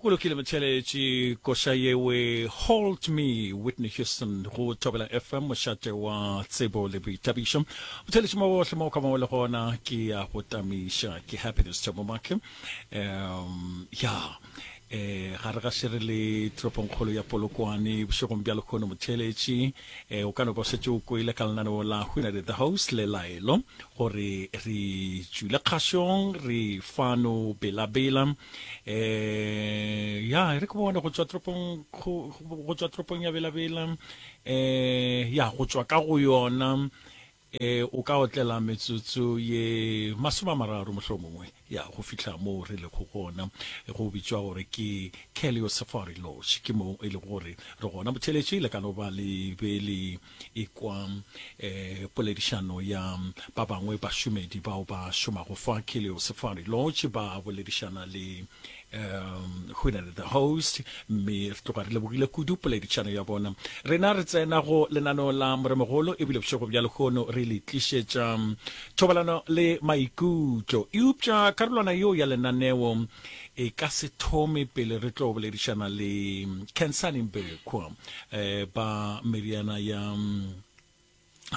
go lokile motheletši koša yewe hold me whitney houston go thobela fm mošate wa tsebo le boithabišo motheletši mo bohle mo o ka mo le gona ke ya go tamiša ke happiness thomomake um ya yeah. eh gare ga šere le toropongkgolo ya polokwane bošegong bja lekgono motheletši E, o ka no ba o šetše o kwele ka lenaneo la Hunare the Host le laelo gore re tšwile kgašong re fano belabela e, ya re ke bone go tšwa toropong go tšwa toropong ya belabela e, ya go tšwa ka go yona Ee, o ka otlela metsotso ye masomeamararo mohlomongwe, ya, go fihla moo re lego gona. Go bitšwa gore ke Kelio Safari Lodge. Ke moo e lego gore re gona. Motheeletši le ka no ba le be le e-kwa e, poledišano ya ba bangwe bašomedi bao ba šomago fa Kelio Safari Lodge, ba boledišana le um go na le the host mme re tloga re lebogile kudu poledišano ya bona rena re tsena go lenaneo la moremogolo ebile bošego bja lekgono re le tlišetša um, thobalano le maikutlo eupša karolwana yeo ya lenaneo e ka se thome pele re tlo boledišana le um, cansaning bekwa um eh, ba meriana ya um,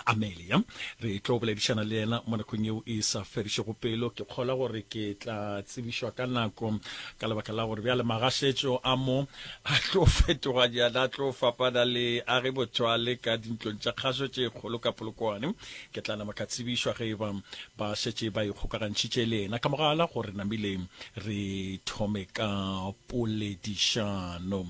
Amelia. Re tlo boledišana le yena mo nakong yeo e sa fedišego pelo. Ke kgolwa gore ke tla tsebišwa ka nako ka lebaka la gore bjale magašetšo a mo a tlo fetoganyana, a tlo fapana le a ge motho a le ka dintlong tša kgašo tše kgolo ka Polokwane. Ke tla nama ka tsebišwa ge e ba ba šetše ba ikgokagantšhitše le yena ka mogala gore namile re thome ka poledišano.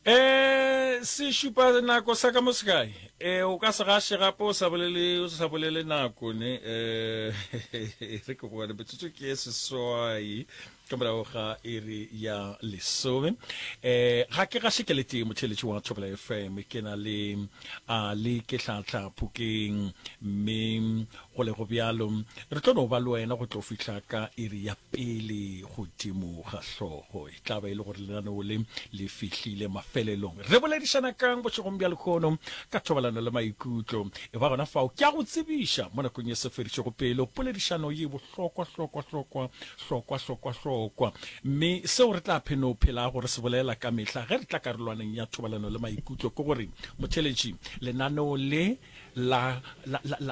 E se šupa nako sa ka mo sekae. E o ka se gaše gape o sa bolele o sa bolele nako ne e re ke bona metsotso ke e seswai ka morago ga iri ya lesome e ga ke gaše ke lete motheletši wa thobela fm ke na le a le ke tlhatlha phokeng mme go le go bjalo re tlo no ba le wena go tlo fihla ka iri ya pele godimo ga hlogo e tla ba e le gore lenaneo le le fihlile mafelelong. Re boledišana kang bošegong bja lekhono ka thobalano le maikutlo? E ba gona fao ke a go tsebiša mo nakong ye se fedišego pelo poledišano ye bohlokwa hlokwa hlokwa hlokwa hlokwa hlokwa mme seo re tla pheno phelago re se bolela ka mehla ge re tla karolwaneng ya thobalano le maikutlo ke gore motheletši lenaneo le la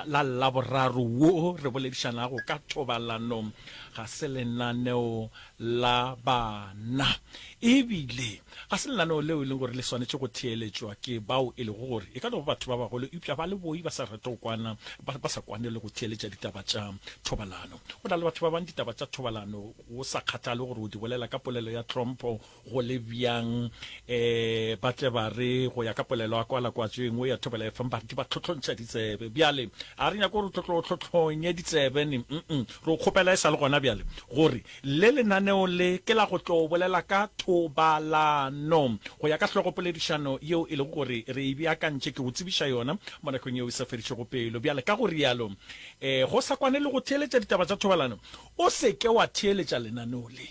la laboraro wo re boledišanago ka thobalano ga se lenaneo la bana, e bile ga se lenaneo leo e lego gore le swanetše go theeletšwa ke bao e lego gore e ka no ba batho ba bagolo eupša ba le boi ba sa rate go kwana, ba, ba sa kwane le go theeletša ditaba tša thobalano. Go na le batho ba bangwe ditaba tša thobalano, go sa kgathale gore o di bolela ka polelo ya tlhompho go le bjang, ee, ba tle ba re go ya ka polelo ya kwa lakwatšo e nngwe ya thobela e feng, ba re di ba tlhotlhontšha ditsebe. Bjale, ga re nyake gore o tlotlo o tlhotlhonye ditsebe ne, uh-uh. Tlo kgopela e sa le gona bjale gore le lenaneo le ke la go tlo bolela ka thobalano, go ya ka hlogopoledišano yeo e lego gore re e beakantše. Ke go tsebiša yona mo nakong yeo e sa fedišego pelo. Bjale, ka go realo, go sa kwane le go theeletša ditaba tša thobalano, o se ke wa theeletša lenaneo le.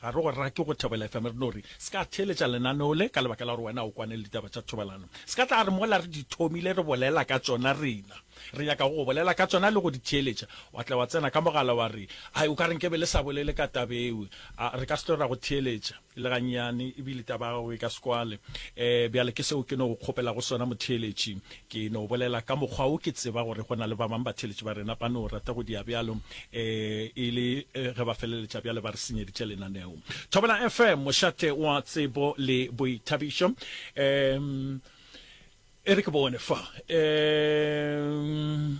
Ga re go rake go Thobela FM, re no re se ka theeletša lenaneo le ka lebaka la gore wena o kwane le ditaba tša thobalano. Se ka tla re mola re di thomile re bolela ka tšona rena. Re nyaka go go bolela ka tšona le go di theeletša. Wa tla wa tsena ka mogala wa re, Ai, o ka re nke be le sa bolele ka taba eo. A re ka se tlo ra go theeletša le gannyane ebile taba ya gago e ka se kwale. E, bjale ke seo ke no go kgopelago sona, motheeletši. Ke no bolela ka mokgwa wo ke tseba gore go na le ba bang batheeletši ba rena ba no rata go dia bjalo, ee, e le ge ba feleletša bjale ba re senyeditše lenaneo. Thobela FM, mošate wa tsebo le boithabišo. Um, e re ke bone fa. Um.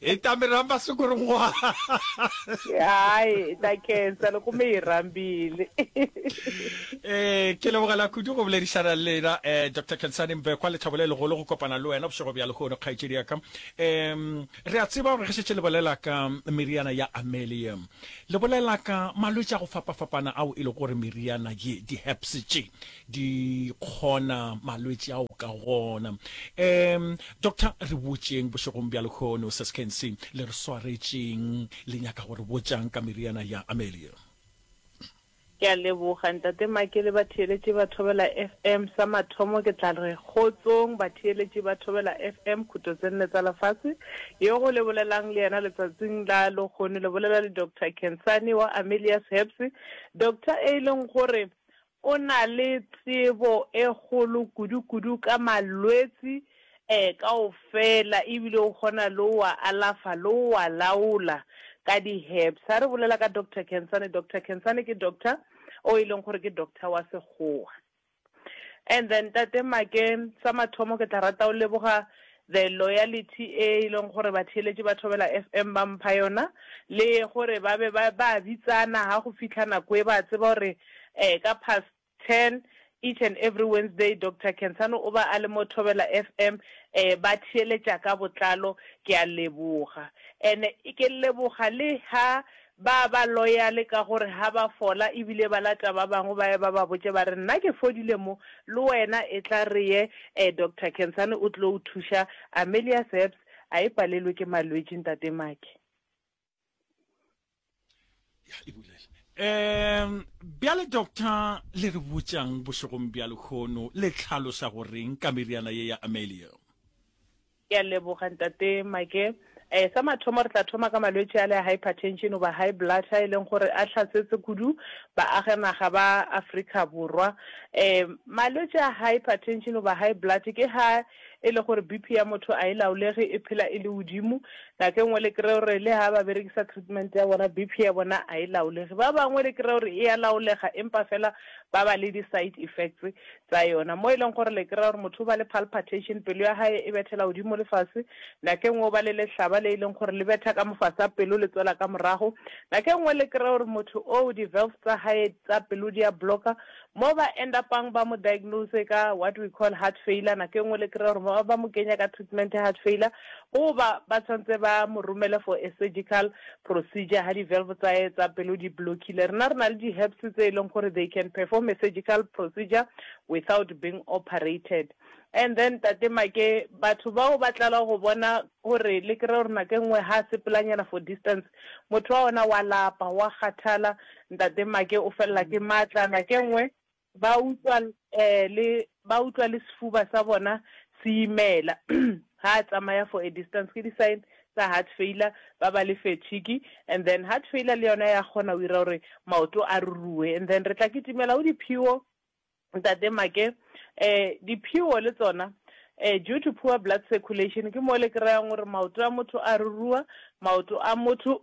hi ta mi rhamba siku rin'wana hayi hi ta khensa loko mi hi rhambile um ke lebogela kudu go boledišana le lena um eh, dr kensane mbekwa lethabo le legolo go kopana le wena bošego bja lehono kgaetšedi yaka um re a tseba gore ge šetse le bolela ka meriana ya amelium le bolela ka malwetse a go fapafapana ao e le gore meriana ye di-heps tše di kgona malwetši ao ka gona. Um Doctor re botšeng bošegong bja lehono, Ses Kensi le re swaretšeng le nyaka go re botšang ka meriana ya Amelia? Ke a leboga Ntate Make le batheeletši ba Thobela FM. Sa mathomo ke tla re kgotsong batheeletši ba Thobela FM khuto tse nne tsa lefase. Yo go le bolelang le yena letsatsing la lohono le bolela le Doctor Kensani wa Amelia's Herbs. Doctor e e leng gore O na le tsebo e kgolo kudu-kudu ka malwetsi e kaofela ebile o kgona le o a alafa le o a laola ka di herbs. Ha re bolela ka Doctor Khensani, Doctor Khensani ke doctor o e leng gore ke doctor wa sekgowa. And then Ntate Make sa mathomo ke tla rata o leboga The loyalty e e leng gore batheeletši ba Thobela FM ba mpha yona, le gore ba be ba ba bitsana ga go fitlha nako e ba tseba gore um ka past ten each and every Wednesday Doctor Khensani o ba a le mo Thobela FM um ba theeletša ka botlalo. Ke a leboga and-e ke leboga le ha Ba ba loyale ka gore ga ba fola e bile ba lata ba bangwe ba ye ba ba botše ba re, Nna ke fodile mo, le wena etla re ye. Eh, Doctor Kensane o tlo o thuša. Amelius Herbs, A e palelwe ke malwetši, Ntate Maki. Ya e bulela. Eh, bjale, Doctor, le re botša'ng bošegong bja lehono? Le hlaloša go re'ng ka meriana ye ya Amelia? Ke a leboga Ntate Make. Eh, sa mathomo re tla thoma ka malwetši ale a hypertension goba high blood a e leng gore a hlasetse kudu baaganaga ba Afrika Borwa. Eh, malwetši a hypertension goba high blood ke ha e le gore BP ya motho a e laolege, e phela e le godimo. Nako e nngwe le kry-e gore le ha ba berekisa treatment ya bona, BP ya bona a e laolege. Ba bangwe le kry-e gore e a laolega empa fela ba ba le di-side effects tsa yona, mo e leng gore le kry-a gore motho o ba le palpatation, pelo ya gae e bethela godimo le fase, nako e nngwe o ba le lehlaba le e leng gore le betha ka mofase a pelo le tswela ka morago, nako e nngwe le kry-a gore motho oo di-valves tsa gae tsa pelo di a blocker, mo ba end up-ang ba mo diagnose ka what we call heart failure, nako e nngwe le kry-a gore ba ba mo kenya ka treatment ya heart failure, goba ba tshwanetse ba mo romele for a surgical Procedure ha di valve tsae tsa pelo di blockile rena re na le di herbs tse eleng gore they can perform a surgical procedure without being operated and then Tate Make batho bao ba tlala go bona gore le kry gore nako e nngwe ha sepelanyana for distance motho wa ona wa lapa wa kgathala Ntate Make o felela ke matla nako e nngwe Ba utlwa le, ba utlwa le sefuba sa bona se imela ha a tsamaya for a distance. Ke di sign tsa heart failure, ba ba le fatigue and then heart failure le yona ya kgona go ira gore maoto a ruruwe. And then re tla kitimela go diphiwo, Ntate Make. Diphiwo le tsona due to poor blood circulation ke mo le kry-ang gore maoto a motho a ruruwa, maoto a motho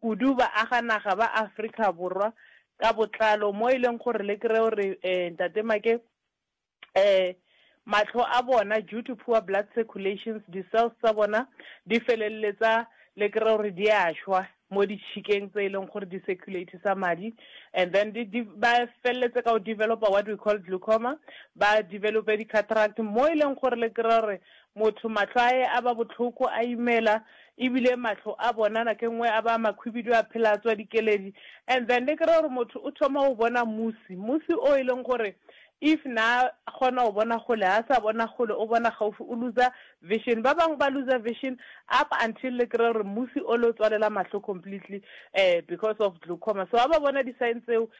kudu baaganaga ba Afrika Borwa ka botlalo, mo e leng gore le kry-e gore um Ntate Make um matlho a bona due to poor blood circulations di-cells tsa bona di feleletsa le kry-e gore di a šwa mo ditšhikeng tse e leng gore di circulate-isa madi and then ba feleletse ka go developer what we call glaucoma, ba develope di-cataract mo e leng gore le kry-e gore Motho mahlo ae a ba bohloko, a imela, ebile mahlo a bona nake engwe a ba makhwibidu a phela a tswa dikeledi. And then ne ke ra gore motho o thoma go bona musi, musi o e leng gore if na kgona go bona kgole, ha sa bona kgole, o bona gaufi, o looser vision. Ba bangwe ba looser vision up until le kry-a gore musi o le o tswalela mahlo completely because of glaucoma. So ha ba bona di-sign tseo,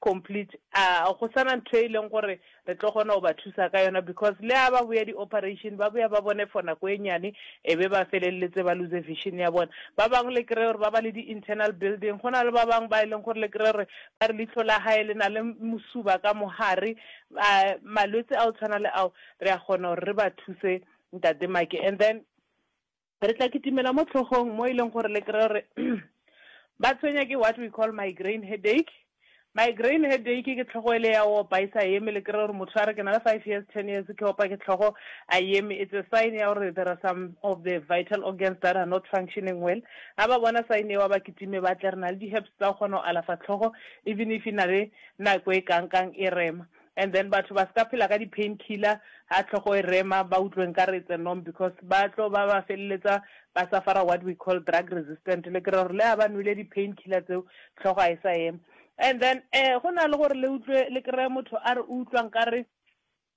complete a go sa na ntho e leng gore re tlo kgona go ba thusa ka yona because le a ba boya di operation ba boya ba bone for nako e nyane e be ba feleletse ba lose vision ya bona ba bangwe le kry-e gore ba ba le di internal building go na le ba bangwe ba e leng gore le kry-e gore ba re leitlho la gae le na le mosuba ka mogare a malwetse a o tshwana le ao re a kgona gore re ba thuse ntate make and then Re tla kitimela mo tlhogong mo e leng gore le kry-e gore ba tshwenya ke what we call migraine headache. Migraine headache ke tlhogo e le ya opa e sa eme, le kry-e gore motho a re ke na le five years, ten years ke opa ke tlhogo a eme. It's a sign ya gore there are some of the vital organs that are not functioning well. Ha ba bona sign eo ba kitime ba tle, re na le di-herbs tsa go kgona go alafa tlhogo even if e na le nako e kang kang e rema. And then batho ba ska phela ka di pain killer ha hlogo e rema ba utlwe nkare it's a norm because ba tlo ba ba feleletsa ba suffer-a what we call drug resistant le kry-a gore le ha ba nwele di pain killer tseo hlogo ha e sa ema. And then um go na le gore le utlwe le kry-e motho a re o utlwa nkare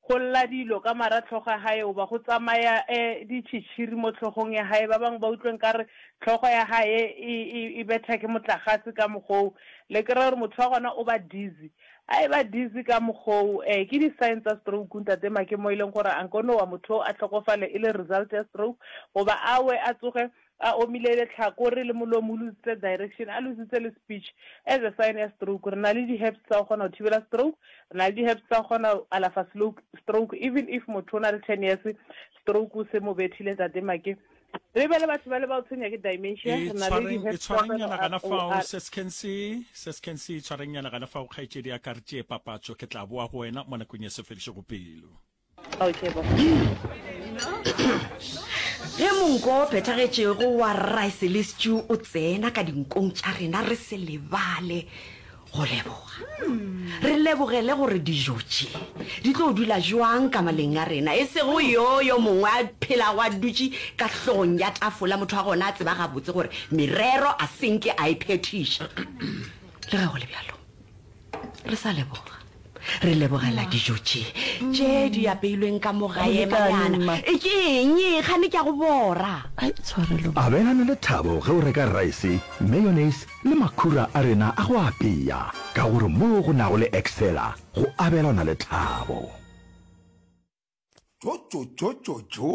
go lla dilo ka mara tlhogo ya hae goba go tsamaya um ditšhitšhiri mo tlhogong ya hae ba bangwe ba utlwe nkare tlhogo ya hae e, e, e betha ke motlagase ka mokgoo le kry-a gore motho wa gona o ba dizzy A eba dizzy ka mokgoo. Ee, ke di sign tsa stroke ntate Make mo e leng gore a nko nowa motho oo a hlokofale e le result ya stroke goba a we a tsoge a omile lehlakore le molomo o luzitse direction a luzitse le speech as a sign ya stroke. Re na le di herbs tsa go kgona go thibela stroke, re na le di herbs tsa go kgona go alafa stroke even if motho o na le ten years stroke se mo bethile ntate Make. re be le batho ba le ba o tshwenya ke dimensia e re na le tshwareng e di-head tshwareng problem, nyana gana fao ROR. seskense seskense tshwareng nyana gana fao kgaetšedi ya ka re tšee papatso ke tla boa go wena mo nakong ya sefedišego pelo okay bo ge monko o phethagetšego wa rice le stew o tsena ka dinkong tša rena re se lebale go leboga re lebogele gore dijo tše di tlo dula jwang ka maleng a rena e sego yo yo mongwe a phelago a dutše ka hlogong ya tafola motho wa gona a tseba gabotse gore merero a senke a e phethiša le ge go le bjalo re sa leboga Re lebogela dijo tše tše di apeilweng ka mo gae, Manyana. Ke eng e? Kgane ke a go bora. Ai, tshwarelo ba. Abelana le thabo ge o reka raese, mayonnaise le makhura a rena a go apea, ka gore moo go nago le Excella go abelana le thabo. Tšotšotšotšotšo!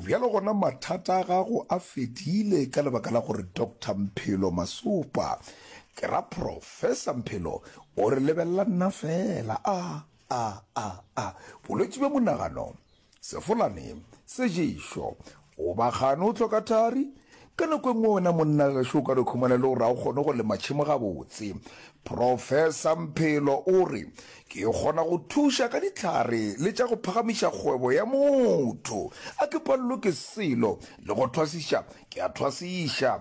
Bjalo gona mathata a gago a fedile ka lebaka la gore Doctor Mphelo Masopa, ke ra Professor Mphelo, o re lebelela nna fela. A, a, a, a, bolwetši bja monagano, sefolane, seješo, Goba gane o hloka thari? Ka nako e nngwe wena monna gešo o ka dikhumana e le gore ga o kgone go lema tšhemo gabotse. Profesa Mphelo o re, Ke kgona go thuša ka dihlare le tša go phagamiša kgwebo ya motho. A ke palelwe ke selo, le go thwasiša ke a thwasiša.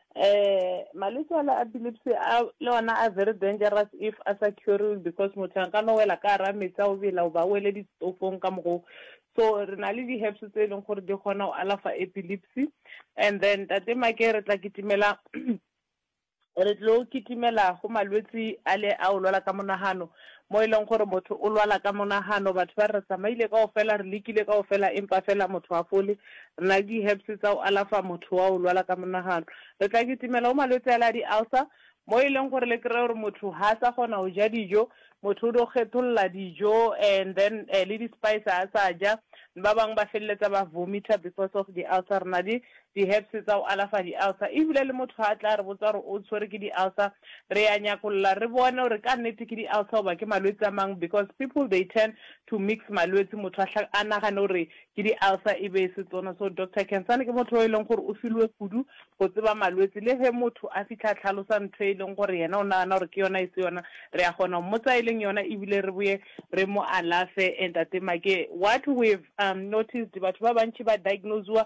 Eh, malwetse a la epilepsy a le ona a very dangerous if a sa curiwe because motho a ka no wela ka ara metsi a o bela o ba wele ditofong ka mogo so re na le di-herbs tse e leng gore di kgona go alafa epilepsy and then tate make re tla kitimela re tlo kitimela go malwetse a le a o lwala ka monagano Mo e leng gore motho o lwala ka monagano, batho ba re, Re tsamaile kaofela, re lekile kaofela, empa feela motho ga fole. Re na le di-herbs tsa go alafa motho wa go lwala ka monagano. Re tla kitimela go malwetse ale a di-ulcer, mo e leng gore le kry-e gore motho ga a sa kgona go ja dijo, motho o dio kgetholola dijo and then le di-spice ga a sa ja. Ba bangwe ba feleletsa ba vomiter because of di-ulcer. Re na le Di-herbs tsa go alafa di-ulcer. Ebile le motho ha a tla a re botsa gore o tshwere ke di-ulcer, re ya nyakolola re bone gore ka nnete ke di-ulcer goba ke malwetse a mang because people they tend to mix malwetse motho a hla a nagane gore ke di-ulcer e be e se tsona. So Doctor Khensani ke motho yo e leng gore o filwe kudu go tseba malwetse. Le ge motho a fitlha a tlhalosa ntho e leng gore yena o nagana gore ke yona e se yona, re ya kgona go mmotsa e leng yona ebile re boye re mo alafe. Ntate Make, what we've umm noticed batho ba bantši ba diagnose-wa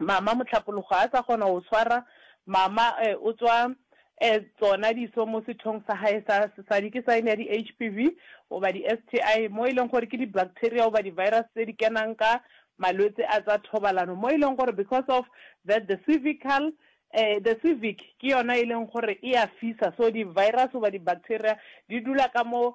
Mama Mohlapologo a sa kgona go swara mama e o tswa e tsona diso mo sethong sa gae sa sesadi ke sign ya di HPV goba di STI mo e leng gore ke di bacteria goba di virus tse di kenang ka malwetse a tsa thobalano mo e leng gore because of that the cervical e the cervic ke yona e leng gore e a fisa so di virus goba di bacteria di dula ka mo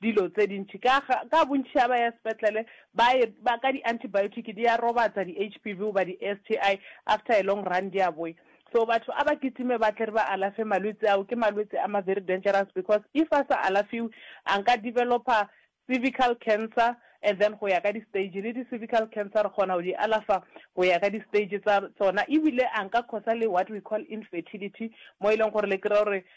dilo tse dintši ka ka bontši ga ba ya sepetlele ba e ba ka di antibiotic di ya robatsa di HPV goba di STI after a long run di a boya so batho a ba kitime ba tle re ba alafe malwetse ao ke malwetse a ma very dangerous because if a sa alafiwe a nka developer cervical cancer and then go ya ka di stage le di cervical cancer re kgona go di alafa go ya ka di stage tsa tsona ebile a nka causa le what we call infertility mo e leng gore le kry-a gore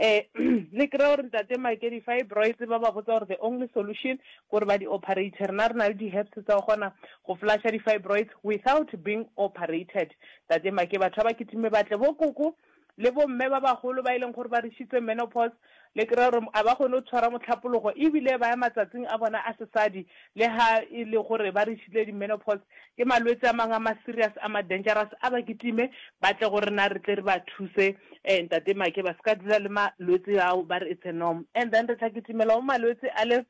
Ee, le kry-e gore Ntate Mike di-fibroids ba ba botsa gore the only solution ke gore ba di-operate. Rena re na le di-herbs tsa go kgona go flusha di-fibroids without being operated. Ntate Mike, batho ba ba kitime ba tle, bo koko le bo mme ba bagolo ba e leng gore ba rishitse menopause, le kry-e gore a ba kgone go tshwara mohlapologo ebile ba ya matsatsing a bona a sesadi Le ha e le gore ba reachile di-menopause, ke malwetse a mang a ma-serious, a ma-dangerous, a ba kitime ba tle go rena re tle re ba thuse. Eh, Ntate Make, ba se ka dula le malwetse ao, ba re it's a norm. And then re tla kitimela go malwetse ale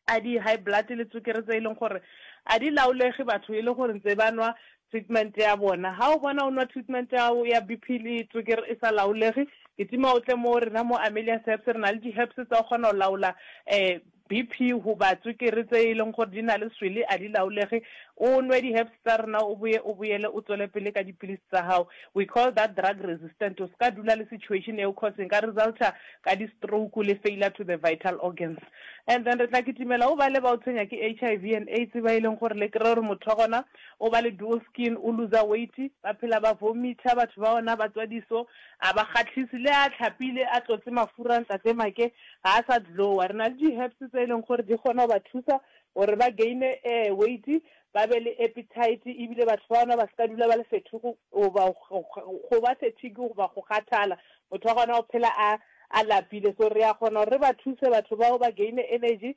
a di-high blood le tswekere tse e leng gore a di laolege batho e le gore ntse ba nwa treatment ya bona. Ha o bona o nwa treatment ya gago ya BP le tswekere e sa laolege, kitima o tle mo go rena mo Amelia's Herbs, re na le di-herbs tsa go kgona go laola um BP goba tswekere tse e leng gore di na le swele a di laolege. O nwe di-herbs tsa rena o boye o boyele o tswele pele ka dipilisi tsa gago. We call that drug resistant. O se ka dula le situation eo cause e ka resulta ka di-stroke le failure to the vital organs. And then re tla kitimela go bale ba o tshwenya ke HIV and AIDS ba e leng gore le kry-e gore motho wa gona o ba le dual skin, o looser weight, ba phela ba vomit-a batho ba ona ba tswa diso, a ba kgahlise le a tlhapile a tlotse mafura ntate Make. ga a sa glowa. Re na le di-herbs tse e leng gore di kgona go ba thusa gore ba gaine weight, ba be le appetite ebile batho ba gona ba se ka dula ba le fethugu goba go ba fatigue goba go kgathala. Motho wa gona o phela a a lapile. So re a kgona gore re ba thuse batho bao ba gaine energy,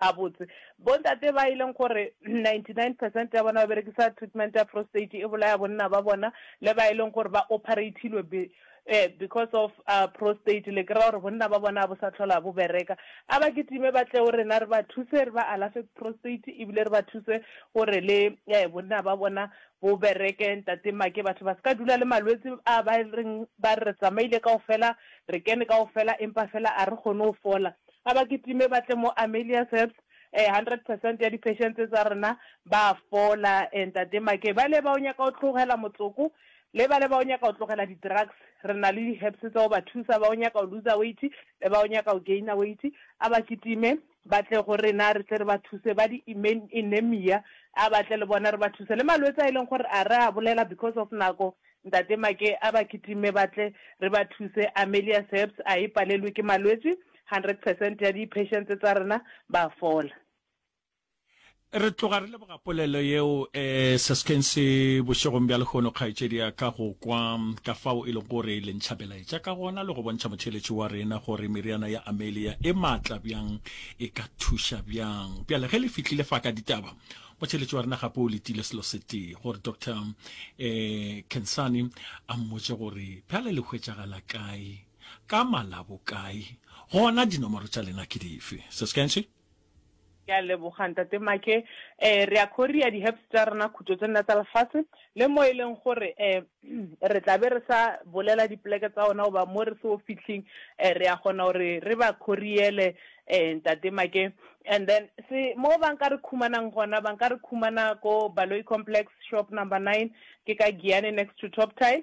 Gabotse, bontate ba e leng gore 99 percent ya bona ba berekisa treatment ya prostate e bolaya bonna ba bona le ba e leng gore ba operatilwe be, eh, because of uh, prostate, le kry-a gore bonna ba bona a bo sa tlhola bo bereka. A ba kitime ba tle go rena re ba thuse, re ba alafe prostate ebile re ba thuse gore le eh, bonna ba bona bo bereke. Ntate Make, batho ba se ka dula le malwetse a ba reng ba re tsamaile kaofela, re kene kaofela empa fela a re kgone go fola. A ba kitime ba tle mo Amelia's Herbs, eh, hundred percent ya di-patients tsa rena ba a fola, eh, Ntate Make. Bale ba o nyaka go tlogela motsoko, le bale ba o nyaka go tlogela di-drugs, re na le di-herbs tsa go ba thusa, ba o nyaka go looser weight, le ba o nyaka go gainer weight, a ba kitime ba tle go rena re tle re ba thuse, ba di-anemia, a ba tle le bona re ba thuse, le malwetse a e leng gore a re a bolela because of nako, Ntate Make a ba kitimme ba tle re ba thuse. Amelia Serbs a e palelwe ke malwetši, 100 percent ya di patients tsa rena ba fola. Re tloga re leboga polelo yeo Seskensi bošegong bja lehono kgaetšedi ya ka go kwa ka fao e lego gore le ntšha belaetša ka gona le go bontšha motheeletši wa rena gore meriana ya Amelia e maatla bjang e ka thuša bjang. Bjale ge le fihlile fa ka ditaba Motšheletši wa rena gape o letile selo setee gore Doctor um Kensani a mmotse gore bjale le hwetšagala kae ka malabo kae gona dinomoro tša lena ke dife Sis Kenshi? Ke a leboga Ntate Make. Eh, re a Korea, di-herbs tša rena, khutšo tše nna tša lefase, le mo e leng gore um re tla be re sa bolela dipoleke tsa ona goba mo re seo fihleng um re a kgona gore re ba khoriele um ntate Make and then se mo ba nka re khumanang gona ba nka re khumana ko Baloyi Complex shop number nine ke ka Giyane next to Top Tile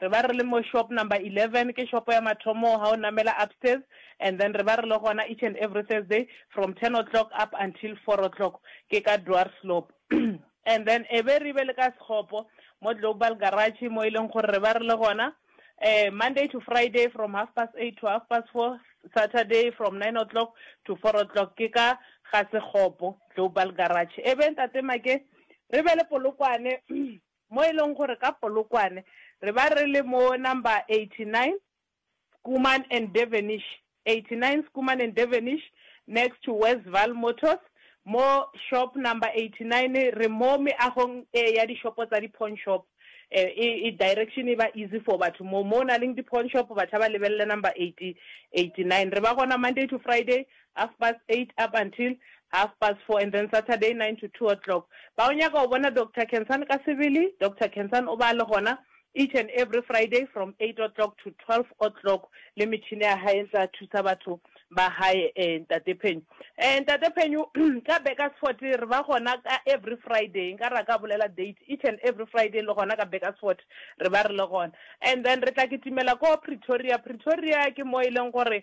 Re ba re le mo shop number eleven, ke shopo ya mathomo ha o namela upstairs, and then re ba re le gona each and every Thursday from ten o'clock up until four o'clock ke ka Dwarsloop. And then e be re be le ka sekgopo mo Global Garage mo e leng gore re ba re le gona Monday to Friday from half past eight to half past four, Saturday from nine o'clock to four o'clock ke ka ga sekgopo, Global Garage. E be Ntate Make re be le Polokwane Mo e lego gore ka Polokwane re ba re le mo number 89 Schoeman and Devenish, 89 Schoeman and Devenish next to Westville Motors mo shop number 89 re mo meagong e ya dishopo tsa di pawn shop e e direction e ba easy for batho mo mo na leng di pawn shop batho ba lebelele number 89 re ba gona Monday to Friday half past eight up until half past four and then Saturday nine to two o'clock. Ba o nyaka go bona Doctor Khensan ka sebele, Doctor Khensan o ba a le gona each and every Friday from eight o'clock to twelve o'clock le metšhini ya gae e ntse a thusa batho ba gae eh, Ntate Phenyo. Eh, Ntate Phenyo ka Bakersfort re ba gona ka every Friday, nka ra ka bolela date, each and every Friday le gona ka Bakersfort re ba re le gona. And then re tla kitimela ko Pretoria, Pretoria ke mo e leng gore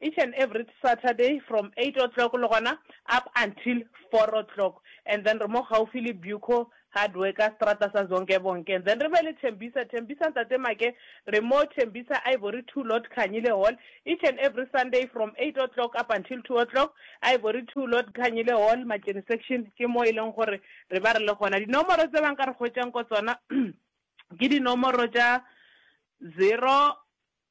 Each and everyt Saturday from eight o'clock le gona up until four o'clock and then re mo gaufi le Buco Hardworker seterata sa Zonkebonke and then re be le Thembisa Thembisa Ntate Make re mo Thembisa Ivory Two Lot Khanyile Hall each and every Sunday from eight o'clock up until two o'clock Ivory Two Lot Khanyile Hall Matšeni Section ke mo e leng gore re ba re le gona dinomoro tse ba nka re hwetšang ko tsona ke dinomoro tša zero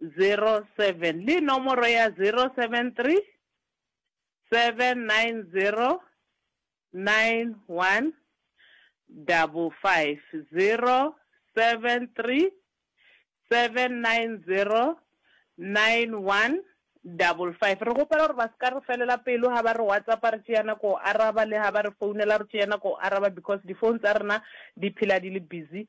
07 le nomoro ya 073 790 9155, 073 790 9155. Re kgopela gore ba se ka re felela pelo ga ba re WhatsAppa re tšea nako go araba le ga ba re founela re tšea nako go araba because di-phone tsa rena di phela di le busy.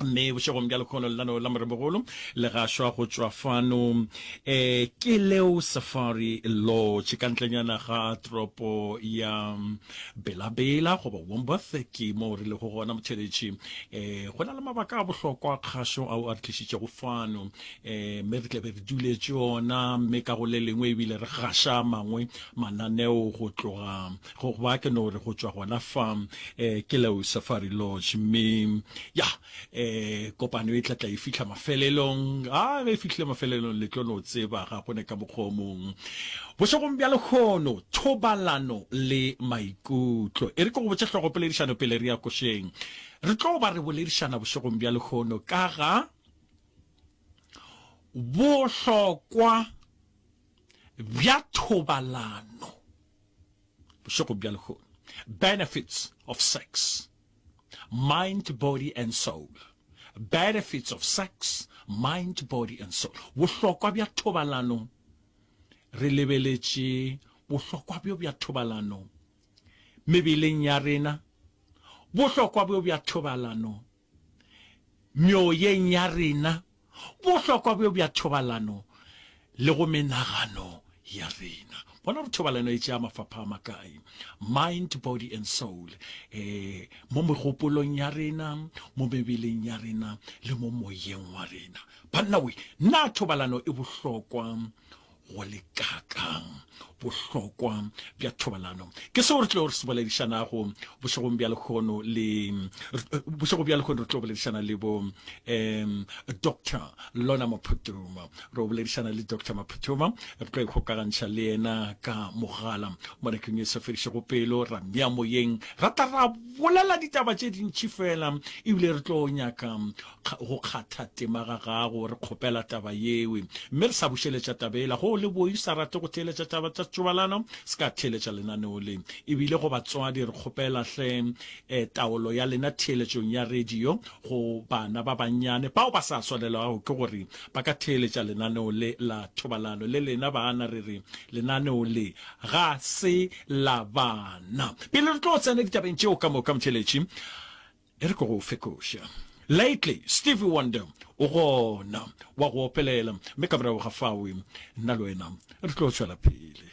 mme bošegong bja lekgono lelano la moremogolo le gašwa go tšwa fano um ke leo safari lodge ka ntlenyana ga tropo ya belabela goba womboth ke moo re lego gona motheletši um eh, go na le mabaka a bohlokwa kgašo ao a re tlišitšego fano um mme re tlabe re duletše ona mme ka go le lengwe ebile re gaša mangwe mananeo go tloga Go ba ke no re go tšwa gona fa eh, ke Leo Safari Lodge, mme ya eh, kopano e tla tla e fihla mafelelong. A ge e fihlile mafelelong, le tlo no tseba ga go ne ka mokgwa mong. Bošegong bja lekgono, thobalano le maikutlo. E re ke go botše hlogo poledišano pele re ya košeng. Re tlo ba re boledišana bošegong bja lekgono ka ga bohlokwa bja thobalano Bošego bja lehono. Benefits of sex. Mind, body and soul. Benefits of sex, mind, body and soul. Bohlokwa bja thobalano. Re lebeletše bohlokwa bjo bja thobalano mebeleng ya rena. Bohlokwa bjo bja thobalano. meoyeng ya rena, bohlokwa bjo bja thobalano le go menagano ya rena. Bona gore thobalano e tšea mafapha a makae, mind, body and soul, e, mo megopolong ya rena, mo mebeleng ya rena le mo moyeng wa rena. Banna we, na thobalano e bohlokwa go le kakang bohlokwa bja thobalano ke seo re tlo re se boledišanago bošegong bja lekgono le bošego bja lekgono re tlo boledišana le bo um doctor lona maphutuma re boledišana le doctor maphutuma re tlo ikgokagantšha le yena ka mogala mo nakeng e sa fedišego pelo ra mea moyeng ra tla ra bolela ditaba tše dintši fela ebile re tlo nyaka go kgatha tema ga gago re kgopela taba yewe mme re sa bušeletša tabela go le boi sa rate go theeletša taba tša tšobalano se ka theeletša lenaneo le ebile go batswadi re kgopela hle eh, taolo ya lena theeletšong ya radio go bana ba bannyane bao ba sa swalelwago ke gore ba ka theeletša lenaneo le la thobalano le lena bana re re lenaneo le ga se la bana pele re tlo tsena ditabeng tšeo ka moka motheletši E re ke go fekoša. Lately, Stevie Wonder o gona, wa go opelela, mme ka morago ga fao nna le wena re tlo tšwela pele.